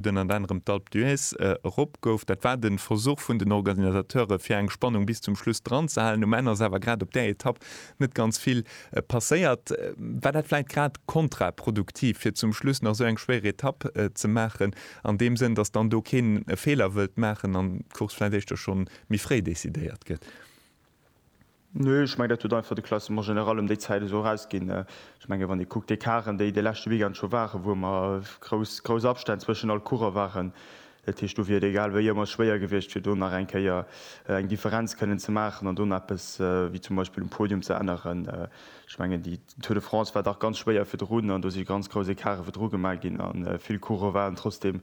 den ënner anerem d'Alpe d'Huez erop gouf. Dat war de Versuch vun den Organisateure fir eng Spannung bis zum Schluss dran ze halen. Um Enn ass awer grad op där Etapp net ganz vill passéiert. War dat vläit grad kontraproduktiv fir zum Schluss nach esou eng schwéier Etapp ze maachen, an deem Sënn, datt dann do keen e Feeler wëllt maachen an d'Course vläit éischter schonn méi fréi decidéiert gëtt? Nö, ech mengen, dat huet einfach de Classement général ëm déi Zäit esou erausginn. Ech mengen, wann ee kuckt, déi Karren, déi de leschte Weekend scho waren, wou ëmmer grouss, grouss Abstänn zwëschen all Coureur waren, dat heescht, do wier et egal wéi ëmmer schwéier gewiescht, fir do nach eng Kéier eng Differenz kënnen ze maachen an do nach eppes wéi zum Beispill um Podium ze änneren. Ech mengen, déi Tour de France war dach ganz schwéier virdrun an do si ganz grouss Ecartë virdru gemaach ginn a vill Coureur waren trotzdeem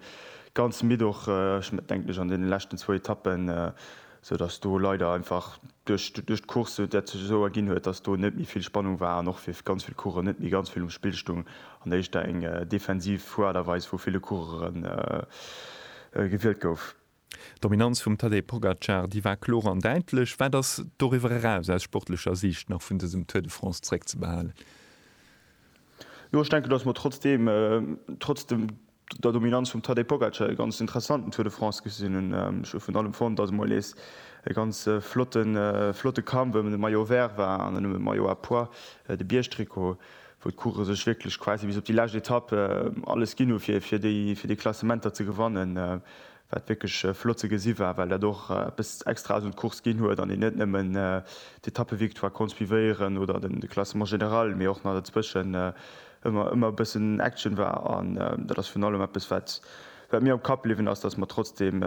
ganz midd och, ech denken ech an deene leschten zwou Etappen, sou dass do leider einfach duerch duerch d'Course dat sech esou erginn huet, dass do net méi vill Spannung war an och fir ganz vill Coureuren net méi ganz vill um Spill stung an éischter eng defensiv Fuerderweis vu ville Coureure gewielt gouf. D'Dominanz vum Tadej Pogacar, déi war kloer an däitlech. Wat ass doriwwer eraus aus sportlecher Siicht nach vun dësem Tour de France zréckzebehalen? Jo, ech denken, dass mer trotzdeem, trotz dem der Dominanz vum Tadej Pogacar e ganz interessanten Tour de France gesinn hunn. Ech hu vun allem fonnt, dass et mol nees e ganz flotte flotte Kampf ëm de Maillot Vert war an ëm de Maillot à pois, de Biergtrikot, wou d'Coureuren sech wierklech quasi bis op déi lescht Etapp alles ginn hu fir déi Klassementer ze gewannen. wat wierklech flott ze gesi war, well dat och eppes extra ass un d'Course ginn huet an een net nëmmen d'Etappevictoire konnt suivéieren oder de Classement général, mee och nach dozwëschen ëmmer e bëssen Action war. An dat ass virun allem eppes, wat mir am Kapp bliwwen ass, dass mer trotzdeem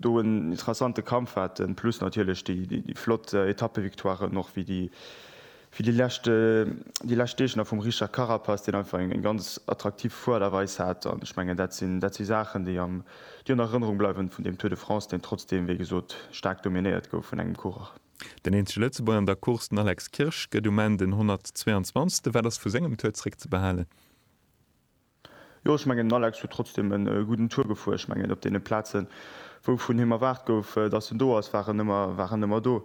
do en interessante Kampf haten, plus natierlech déi flott Etappevictoiren och, wéi déi Fir déi lescht déi lescht Deeg nach vum Richard Carapaz, deen einfach eng ganz attraktiv Fuerderweis hat. An ech mengen, dat sinn dat si Saachen, déi am déi an Erënnerung bleiwen vun deem Tour de France, deen trotzdeem, wéi gesot, staark dominéiert gouf vun engem Coureur. Den eenzege Lëtzebuerger an der Course, den Alex Kirsch, gëtt um Enn den 122. Wat ass vu sengem Tour zréckzebehalen? Jo, ech mengen den Alex huet trotzdem en gudden Tour gefuer. Ech mengen op deene Plazen wou vun him erwaart gouf dass en do ass war en ëmmer war en ëmmer do.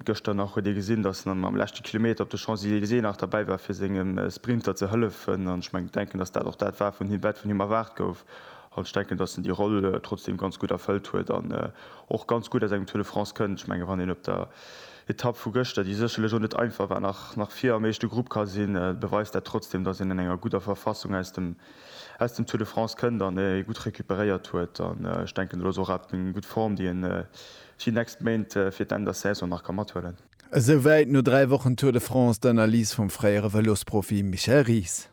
Gëschter nach huet ee gesinn dass en am leschte Kilometer op de Champs-Elysées nach derbäi war fir sengem Sprinter ze hëllefen an ech mengen denken dass dat och dat war vun him wat vun him erwaart gouf an ech denken dass en déi Roll trotzdem ganz gutt erfëllt huet an och ganz gutt aus engem Tour de France kënnt. Ech mengen wann een op der Etapp vu gëschter, déi sécherlech och net einfach war, nach vir am éischte Grupp ka sinn, beweist dat trotzdeem, datt een an enger gudder Verfassung aus dem Tour de France kënnt an ee gutt recuperéiert huet. An ech denken, dat ass och awer eng gutt Form, déi ee fir déi nächst Méint, fir d'Enn der Saison nach ka mathuelen. Esou wäit no dräi Wochen Tour de France d'Analys vum fréiere Vëlosprofi Michel Ries.